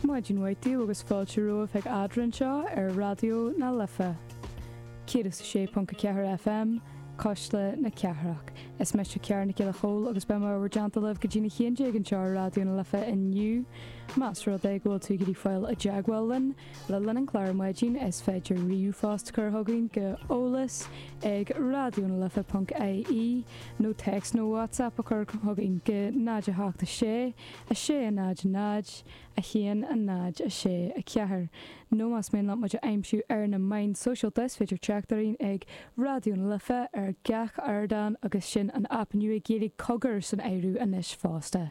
Maidin mhaith daoibh agus fáilte romhaibh chuig Eadra anseo ar Raidió na Life 106.4 FM, Cuisle na Cathrach. Is mise Ciara Nic Giolla Chomhaill agus beidh mé in bhur dteannta libh go dtí a haon déag anseo ar Raidió na Life inniu. Más rud é go bhfuil tú ag iarraidh fáil i dteagmháil linn, Le linn an chláir ar maidin is féidir ríomhphost a chur chugainn go eolas ag raidionalife ponc ie nó téacs nó WhatsApp a chur chugainn go 0 7 6 6 0 0 1 0 6 4 nó más mian leat muid a aimsiú ar na meáin sóisialta is féidir trácht orainn ag Raidió na Life ar gach ardán agus sin an aip nua Gaeilge Cogar san áireamh anois fosta.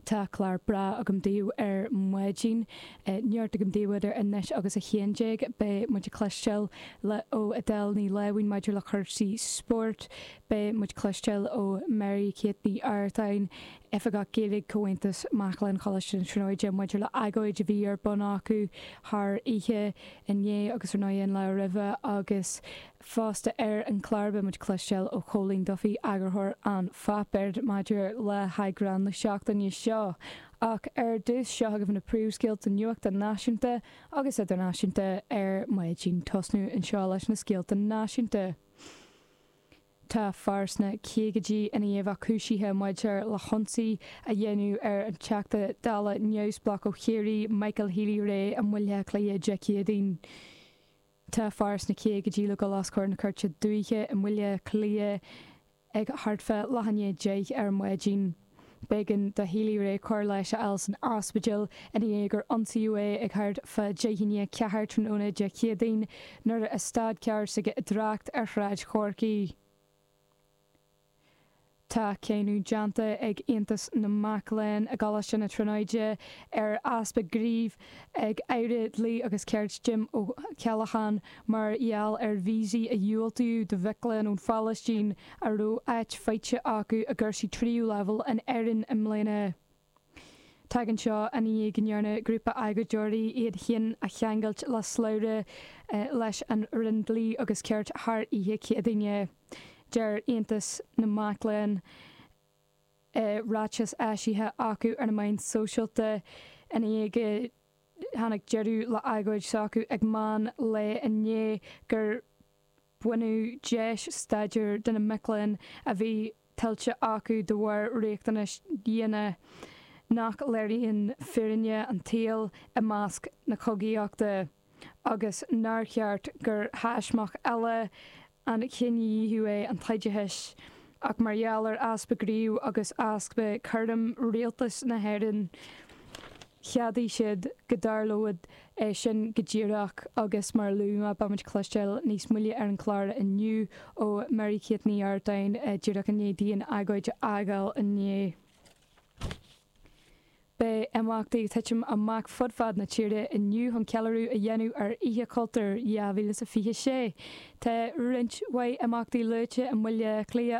Tá clár breá agam daoibh ar maidin. Neart agam daoibh idir anois agus a haon déag. Beidh muid ag cloisteáil ó Edel Ní Láimhín maidir le cúrsaí spóirt. Beidh muid ag cloisteáil ó Mary Kate Ní Artáin, Oifigeach Gaeilge Chomhaontas Mac Léinn Choláiste na Tríonóide maidir le hagóid a bhí ar bun acu thar oíche inné agus ar ndóigh an lá roimhe agus Fosta ar an gclár beidh muid ag cloisteáil ó Chóilín Duffy, eagarthóir An Páipéar, maidir le heagrán na seachtaine seo. Ach ar dtús, seo agaibh na príomhscéalta nuachta náisiúnta agus idirnáisiúnta ar maidin. Ag tosnú anseo leis na scéalta náisiúnta. Tá fear sna caogaidí i ndiaidh a bheith cúisithe maidir le hionsaí a dhéanamh ar an Teachta Dála Neamhspleách ó Chiarraí, Michael Healy-Rae i mBaile Átha Cliath Dé Céadaoin. Tá fear sna caogaidí le dul os comhair na cúirte dúiche i mBaile Cliath ag thart fá leath i ndiaidh a deich ar maidin. B'éigean do Healy-Rae cóir leighis a fháil san ospidéal i ndiaidh gur ionsaíodh é ag thart fá deich i ndiaidh a ceathair tráthnóna Dé Céadaoin nuair a stad carr s'aige i dtrácht ar Shráid Chorcaí. Tá cáineadh déanta ag Aontas na Mac Léinn i gColáiste na Tríonóide ar easpa gnímh ag Aire Dlí agus Cirt Jim Ó Ceallacháin mar gheall ar víosaí a dhiúltú do mhic léinn ón Phalaistín a raibh áit faighte acu i gcúrsaí tríú leibhéal in Éirinn i mbliana. Tagann seo i ndiaidh go ndearna grúpa agóideoirí iad féin a cheangailt le slabhra leis an Roinn Dlí agus Cirt thar oíche Chéadaoin. Deir Aontas na Mac Léinn i ráiteas eisithe acu ar na meáin sóisialta i ndiaidh go dtáinig deireadh le agóid s'acu ag meán lae inné gur baineadh deis staidéir de na mic léinn a bhí tuillte acu de bharr riachtanais dhiana nach léiríonn fírinne an tsaoil i measc na cogaíochta agus nár cheart gur thaismeach eile an chinedhíothú é an t-oideachas ach mar gheall ar easpa gnímh agus easpa cúraim rialtas na hÉireann Cheadaigh siad go dtarlódh é sin go díreach agus, mar a luaigh mé, beimid ag cloisteáil níos moille ar an chlár inniu ó Mary Kate Ní Ardáin díreach i ndiaidh di an agóid a fhágáil inniu. Beidh imeachtaí ag titim amach fud fad na tíre inniu chun ceiliúradh a dhéanamh ar Oíche Chultúir 2026. Tá roinnt mhaith imeachtaí luaite i mBaile Átha Cliath,